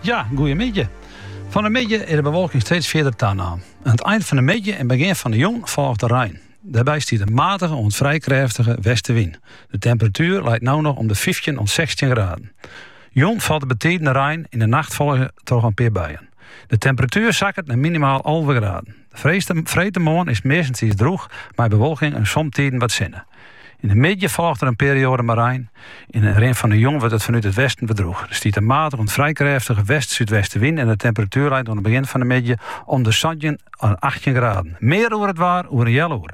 Ja, goeiemiddei. Fan 'e middei is de bewolking steeds fierder tanommen. Aan it ein fan 'e middei en begjin fan 'e jûn folget de rein. Dêrby stiet in matige oant frij krêftige westewyn. De temperatuer leit no noch om de fyftjin oant sechstjin graden. Jûn falt der betiden rein en yn 'e nacht folge troch in pear buien. De temperatuer sakket nei minimaal alve graden. Freedtemoarn is it meastentiids drûch mei bewolking en somtiden wat sinne. Yn de middei folget der in perioade mei rein. Yn de rin fan de jûn wurdt it fanút it westen wer drûch. Der stiet in matige oant frij krêftige west-súdwestenwyn en de temperatuer leit oan it begjin fan de middei om de santjin oant achttjin graden. Mear oer it waar oer in healoer.